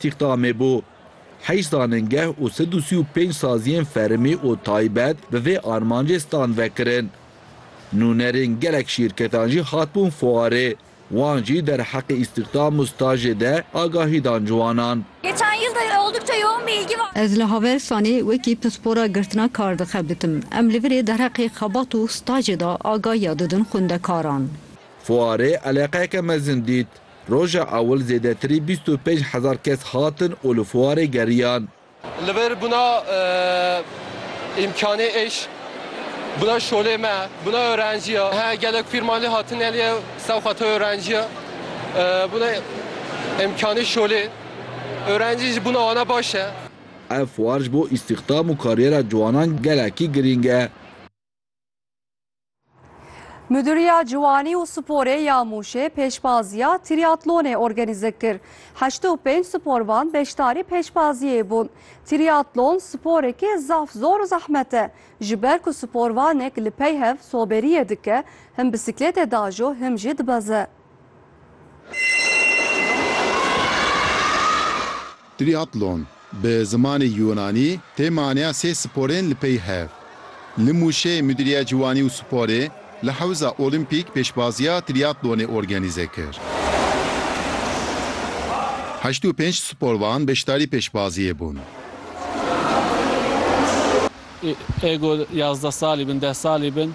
Tîxta me bû. Heşt zanîngeh û sed û sî û pênc saziyên fermî û taybet bi vê armancê stand vekirin. Nûnerên gelek şîrketan jî hatibûn fuarê, wan jî derheqê îstîxdam û stajê de agahî dan ji wanan. Ez li Havelsanê wekî pispora girtina kar dixebitim. Em li virê derheqê xebat û stajê de agahiya didin xwendekaran. Fuarê eleqeyeke mezin dît. Roja ewil zêdetirî bîst û pênc hezar kes hatin û li fuarê geriyan. Li vir bûna îmkanê îş, bûna şolê me, bûna öğrenci ya. He gelek fîrman lê hatin elê sewq a to öğrenci ya. Bûna îmkanê şolê. Öğrenci jî bûna wana baş e. Ev fuar ji bo îstîxdam û kariyera ciwanan gelekî girîng e. Muduriya Ciwanî û Sporê ya Mûşê pêşbaziya trîatlonê organîze kir. Heşt û pênc sporvan beşdarî pêşbaziyê bûn. Trîatlon sporekê zaf zor û zehmet e. Ji ber ku sporvanek li pey hev soberiyê dike, him bisiklêtê dajo him jî dibeze. Triatlon, bi zimanê Yûnanî tê maneya sê sporên li pey hev. Li Mûşê Mudîriya Ciwanî û Sporê li Hewza Olîmpîk pêşbaziya triatlonê organîze kir. Heşt û pênc sporvan beşdarî pêşbaziyê bûn. Ego yazdeh salî bin, deh salî bin.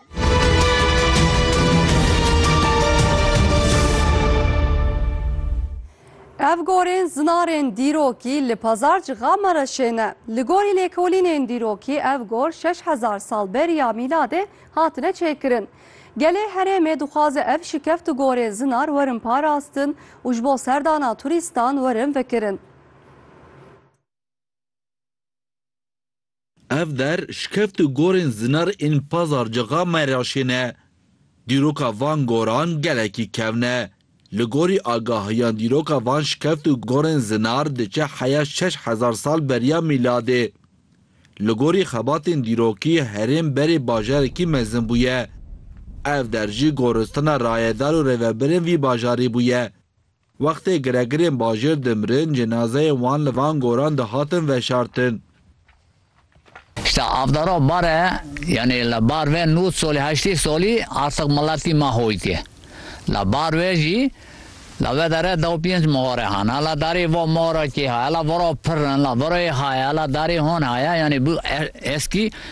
Ev gorên zinarên dîrokî li Pazar Cixama re şêne. Li gorî lêkolînên dîrokî ev gor şeş hezar sal beriya mîladê hatine çêkirin. Gelê herêmê dixwaze ev şikeft û gorên zinar werin parastin û ji bo serdana turîstan werin vekirin. Ev der şikeft û gorên zinar ên pazarcıxa Meraşê ne. Dîroka van goran gelekî kevn e. Li gorî agahiyan dîroka van şikeft û gorên zinar diçe heya şeş hezar sal beriya mîladê. Li gorî xebatên dîrokî herêm berê bajarekî mezin bûye. Ev der jî goristana rayedar û rêvebirên vî bajarî bûye. Wextê giregirên bajêr dimirin, cenazeyên wan li van goran de hatin veşartin. Şita avdara bare yanê li bar ve nod solî heştê solî artiq miletî ma hoytê. La bar ve jî la ve dere dew pênc mare hane. La darê va mara kê haye? La vara pir in. La vara yê haye? La darê hon haye? Yanê bû eskî